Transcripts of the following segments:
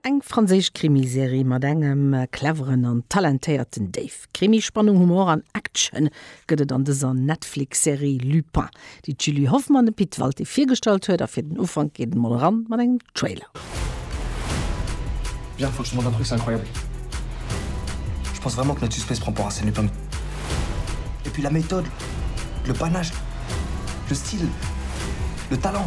Eng franséisch Krimiserie mat engem cleveren an talentéierten Dave. Krimi, Spannung, Humor an Action gëtt et an dëser Netflix-Serie Lupin, déi d'Julie Hoffmann dem Pit Walté virgestallt huet. A fir den Ufank geet et mol eran mat engem Trailer. Bien franchement votre truc c'est incroyable je pense vraiment que notre suspect se prend pour Arsène Lupin et puis la méthode le panache le style le talent.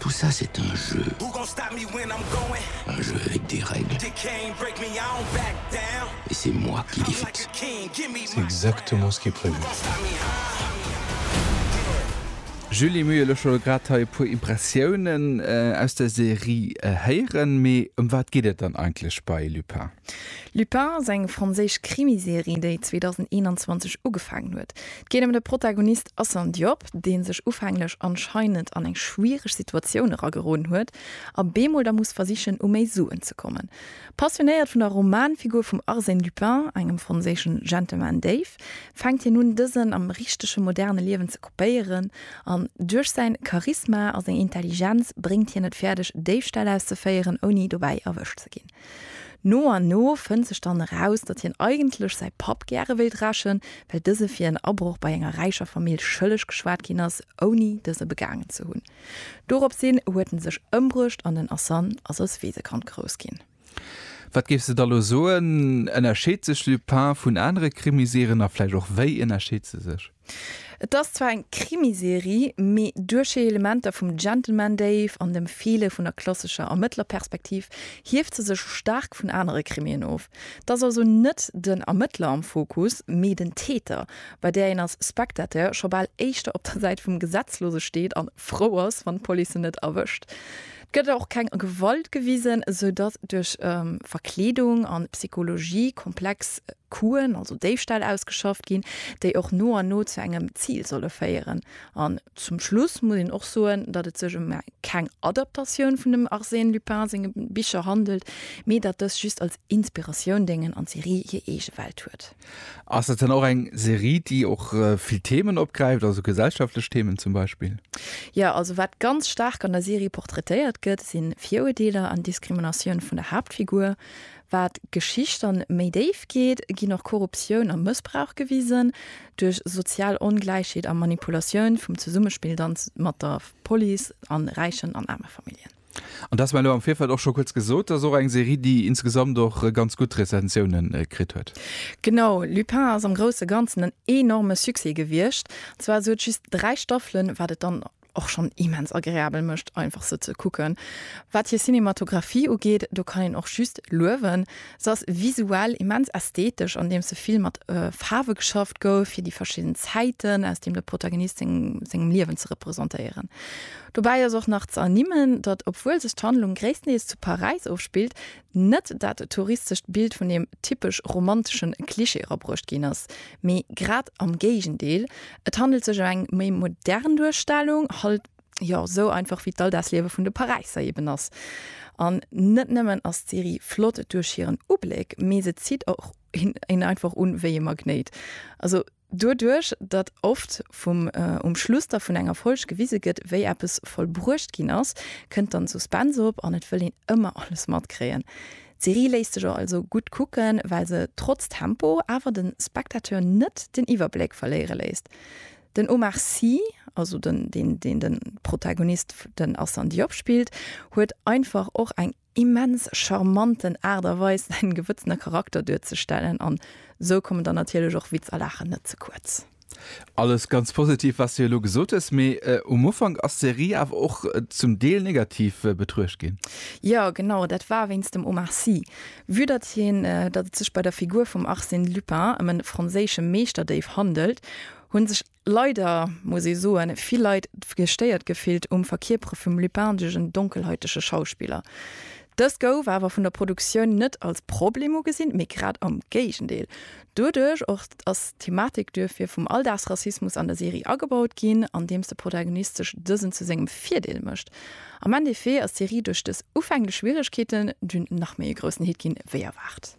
Tout ça c'est un jeu, un jeu avec des règles, et c'est moi qui les fixe. C'est exactement ce qui est prévu. Julie Muel, ech wollt grad hei e puer Impressiounen aus der Serie héieren, mee ëm wat geet et dann eigentlech bei Lupin? Lupin ass eng franséisch Krimiserie, déi 2021 ugefaangen huet. 't geet ëm de Protagonist Assane Diop, deen sech ufänglech anscheinend an eng schwiereg Situatioun erageroden huet a bemol da muss versichen u méi Suen ze kommen. Passionéiert vun der Romanfigur vum Arsène Lupin, engem franséischen Gentleman Déif, fänkt hien un dësen am richtege moderne Liewen ze kopéieren an duerch säin Charisma a seng Intelligenz bréngt hien et fäerdeg Déifställ auszeféieren ouni dobäi erwëscht ze ginn. No an no fënnt sech dann eraus, datt hien eigentlech säi Papp gäre wéilt rächen, well dëse fir en Abroch bei enger räicher Famill schëlleg geschwat ginn ass, ouni dëse begaangen ze hunn. Dorops hin huet en sech ëmbruecht an den Asan ass als Weesekand grouss ginn. Wat géifs de da lo soen, ënnerscheet sech Lupin vun anere Krimiserien a vläicht och wéi ënnerscheet se sech? Et ass zwar eng Krimiserie, mee duerch hir Elementer vum Gentleman Dave an dem Feele vun der klassescher Ermëttlerperspektiv hieft se sech staark vun anere Krimien of. Et ass also net den Ermëttler am Fokus, mee den Täter, bei där een als Spectateur scho bal éischter op der Säit vum Gesetzlose steet an frou ass, wann d'Police en net erwëscht. Et gëtt och keng Gewalt gewisen, sou datt duerch Verkleedung an Psychologie komplex Kuen, also Déifställ, ausgeschafft ginn, déi och no an no zu engem Zil solle féieren. An zum Schluss muss een och soen, datt et sech ëm keng Adaptatioun vun dem Arsène Lupin senge Bicher handelt, mee datt dës just als Inspiratioun déngen an d'Serie hir eege Welt huet. Ass dat dann och eng Serie, déi och vill Themen opgräift, also gesellschaftlech Themen zum Beispill? Jo, also wat ganz staark an der Serie portraitéiert gëtt, si Viruerdeeler an Diskriminatioun vun der Haaptfigur. Wat d'Geschicht dann méi déif geet, ginn och Korruptioun a Mëssbrauch gewisen. Duerch sozial Ongläichheet a Manipulatioun vum Zesummespill dann mat der Police an räichen an aarme Familljen. An dass mer elo am Virfeld och scho kuerz gesot, dass och eng Serie, déi insgesamt och ganz gutt Rezensioune kritt huet. Genau, Lupin ass am grousse Ganzen en enorme Succès gewiescht. Zwar sou et just 3 Staffelen, wat et dann och schonn immens agreabel mécht, einfach se ze kucken. Wat hir Cinematographie ugeet, do kann een och just luewen. Se ass visuell immens ästhetesch, andeems se vill mat Faarwe geschafft gouf, fir déi verschidden Zäiten, aus deem de Protagonist seng sengem Liewen ze representéieren. Dobäi ass och nach ze ernimmen, datt, obwuel sech d'Handlung gréisstendeels zu Paräis ofspillt, Net dat touristescht Bild vun deem typesch romantesche Klischee erabruecht ginn ass, mee grad am Géigendeel, et handelt sech ëm eng méi modern Duerstellung, halt jo sou einfach wéi d'Alldagsliewe vun de Paräisser eben ass. An net nëmmen ass d'Serie flott duerch hiren Ubléck, mee se zitt och een einfach un wéi e Magnéit. Also. Doduerch, datt oft vum um Schluss da vun enger Folg gewise gëtt, wéi eppes vollbruecht ginn ass, kënnt dann Suspense op an et wëll een ëmmer alles matkréien. D'Serie léisst sech also gutt kucken, well se trotz Tempo awer de Spectateur net den Iwwerbléck verléiere léisst. Den Omar Sy, also den deen den Protagonist den Assane Diop spillt, huet einfach och eng immens charmanten Aart a Weis säin gewëtzene Charakter duerzestellen an sou kommen dann natierlech och Witz a Laachen net ze kuerz. Alles ganz positiv wat s de elo gesot hues, mee um Ufank ass d'Serie awer och zum Deel negativ betruecht ginn. Jo genau, dat war wéinst dem Omar Sy. Vue datt hien, datt et sech bei der Figur vum Arsène Lupin ëm e franséische Meeschterdéif handelt, hunn sech Leider muss ee soen, vill Leit gestéiert gefillt um Verkierpere vum lupindegen, donkelhäutege Schauspiller. Dëst gouf awer vun der Produktioun net als Problem ugesinn, mee grad am Géigendeel. Doduerch och ass d'Thematik duerfir vum Alldagsrassismus an der Serie agebaut ginn, andeems de Protagonist sech dësen zu sengem Virdeel mécht. Am Endeffet ass d'Serie duerch dës ufänglech Schwieregkeeten dunn nach méi e groussen Hit ginn, wéi erwaart.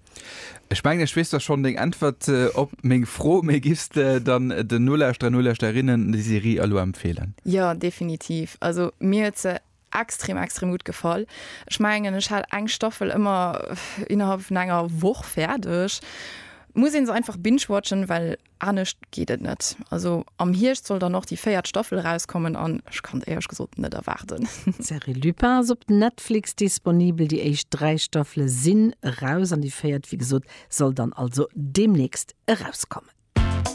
Ech mengen ech weess da schonn deng Äntwert op meng Fro, mee giffs de dann den Nolauschterer, Nolauschterinnen déi Serie elo empfeelen? Jo, definitiv. Also mir huet se extrem, extrem gutt gefall. Ech mengen ech hat eng Staffel ëmmer innerhalb vun enger Woch fäerdeg. Muss een se einfach binge-watchen, well Anescht geet et net. Also am Hierscht soll dann och déi véiert Staffel erauskommen an ech kann et éierlech gesot net erwaarden. D'Serie Lupin ass op Netflix disponibel. Déi éischt dräi Staffele sinn eraus an déi véiert, wéi gesot, soll dann also deemnächst erauskommen.